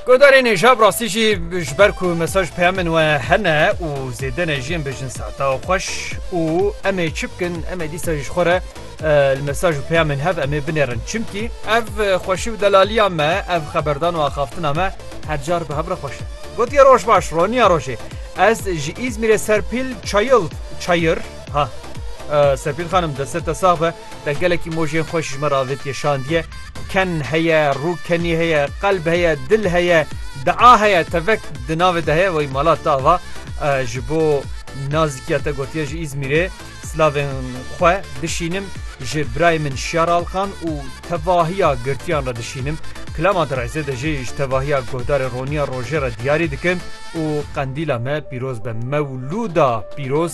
Godarên êja bi rastî jî ji ber ku mesaj peya min we hene û zêde ne jiyên bijin sata xweş û em ê çi bikin em ê dîsa ji xwe re li mesaj û peya min hev em ê binêrin çimkî ev xweşî û delaliya me ev xeberdan û axaftina me her car bi hev re xweş e gotiye roj baş roniya rojê ez ji îzmîrê serpîl çayil çayir ha serpîl xanim deste te sax be Te gelekî mojên xweş ji me re avêtiye şandiye. Ken heye, rûkenî heye, qelb heye, dil heye, dea heye, tevek di navê de heye. Wey mala te ava ji bo nazîkiya te gotiye ji Îzmîrê silavên xwe bişînim, ji birayê min Şiyar Alkan û tevahiya girtiyan re dişînim. Kilama di rêzê de jî ji tevahiya guhdarê roniya rojê re diyarî dikim û qendîla me pîroz be. Mewlûda pîroz!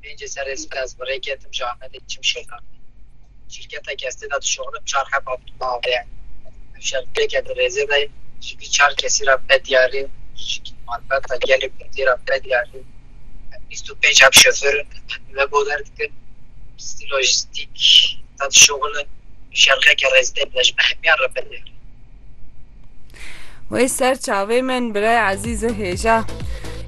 Pêncê serê sibê ez bi rê ketim ji Amedê çim şêxan. Şîrketeke ez tê de dişoxnim çar heba bi dima avê ye. Ev şerpêke di rêzê de ye. Ji vî çar kesî re be diyar in ji malbata gelê kurdî re be diyar in. Em bîst û pênc heb şofêr in em ve boder dikin. Pistî lojîstîk de dişoxilin. Ev şerxeke rêzê de ye ji me hemiyan re be diyar in. Wey ser çavê min birayê ezîz e hêja.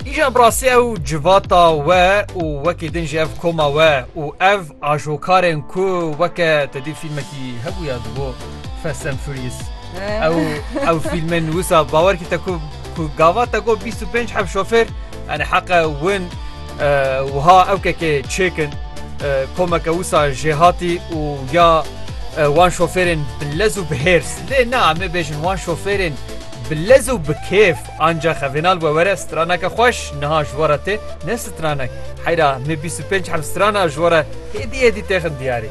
Îja bi rastî ew civata we û wekî din jî ev koma we û ev ajokarên ku weke te dî fîlmekî hebûya dibo Fast and Furious. Ew ew fîlmên wisa bawer kî te ku ku gava te got bîst û pênc heb şofêr yani heqe win Wiha ewkekê çêkin komeke wisa jêhatî û ya wan şofêrên bi lez û bi hêrs lê na em ê bêjin wan şofêrên bi lez û bi kêf anca xevêna li we were straneke xweş niha ji we re tê ne stranek heyra me bîst û pênc heb strana ji we re hêdî hêdî têxin diyarî.